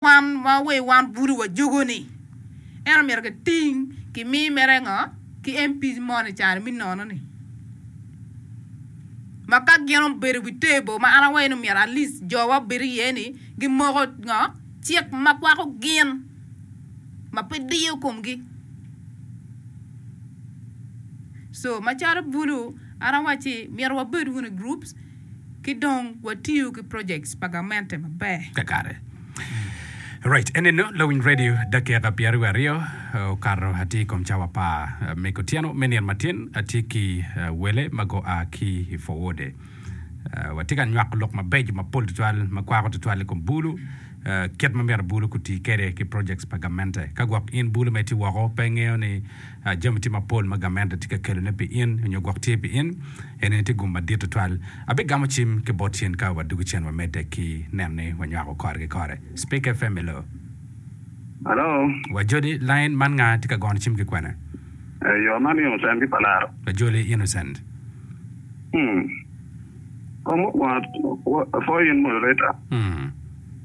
Wan wa we wan budu wa jogo ni en omyero ki ting ki mi mere ngo ki MP mo ni caro mi nono ni ma ka gin obedo wi table ma an awayo ni omyero at least jo wa obed iye ni gi moko ngo cik ma kwako gin ma pe diyo kom gi so ma calo budu an awaci myero wa bed wunu groups ki dong watiyo ki projects pa gamente maber. Kakare. Right. Eninu lawiny radio dakika pyeri wa aryo okato atye ikom cawa apar me kutyeno me nino matin atye ki wele ma go a ki i four wode. Watye ka nywako lok mabeco mapol tutwal ma kwako tutwal ikom bulu kit ma myero bulu kutii kede ki projects pa gamente. Ka gwok in bulu ma itye woko pe ingeyo ni Jami tye mapol ma gamente tye ka kelone pi in nyo gwok tye pi in. Enini tye gum madit tutwal. Abigamo cim ki bot cen ka wadugo cen wa medde ki neno ni wanywako kore ki kore. Speaker Family. Hello. Wa Joli, line man nga tye ka gono cim ki kwene? Yoo man innocent ki palaro. Wa Joli, innocent. Hmm. Kong mukwongo pwoyo in moderator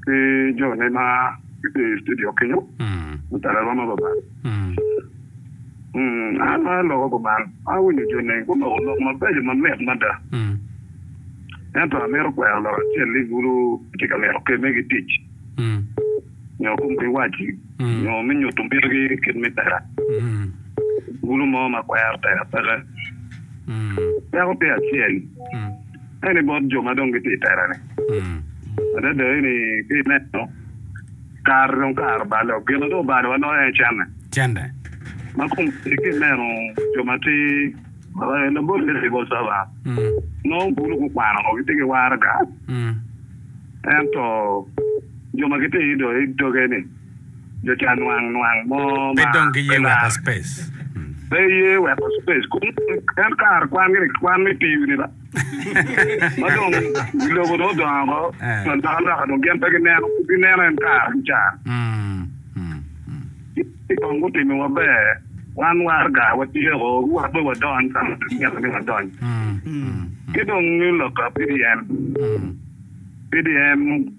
ki joni ma gitye i studio kenyo. Mutara rwom ma babat. An aa loka kuman, awinyo jo neng gunoko lok mabeco mamit mada. Ento amito kwero lok acel ni bulu gitye ka mito kemme ki tic nyo kom kiwaci nyo me nyuto mitogi kit me tera. Bulu mo ma kwero tera peke peko tye acel eni bot jo ma dong gitye i tera-ni adada eni ka ineno. Kare dong kare bal dok gin ma dong obalo wanongo aye cente. Cente. Ma kom tic ki ineno jo ma ti labol me civil servant nongo bulu gukwano ngo giti ki waraga ento jo ma giti i doge ni jo ca nwang nwang mo ma pe dong giye weko space. Pe iye weko space kong en kare kwan gire kwan me piu ni ba. Ma dong lobo dong odongo woko, dong alokaloka dong gin pe gineno, pud gineno en kare ki caa. Ci kong gutimi maber, wan waraga watyeko, wa pe wadony ka ma gimito ni wadony. Ci dong loka PDM, PDM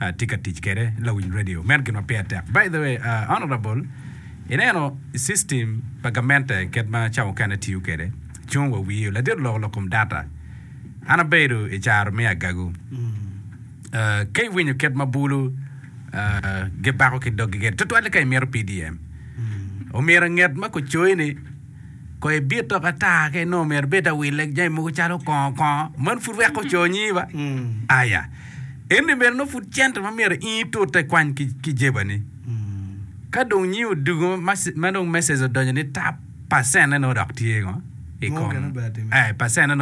atye ka tic kede lawiny radio meno gin ma peya tek by the way honorable ineno system pa gamente ket ma cawa mukene tiyo kede cung wa wiyo ladit oloko lok kom data an abedo i caro me agagu ka iwinyo ket ma bulu gibako ki dogi kede tutwal ni ka imito pdm omyero anget ma kucoyi ni Kono i bit dok ata ka inongo omyero ibed awille ki jami mogo calo kongo kongo, man pud weko oconyi ba? Aya, ento i meno nongo pud cente ma myero in itute ikwany ki jebani. Ka dong nyi odugo ma dong message odonyo ni tap, percent-ne nongo dok tye ngo? I kom, eh, percent-ne nongo.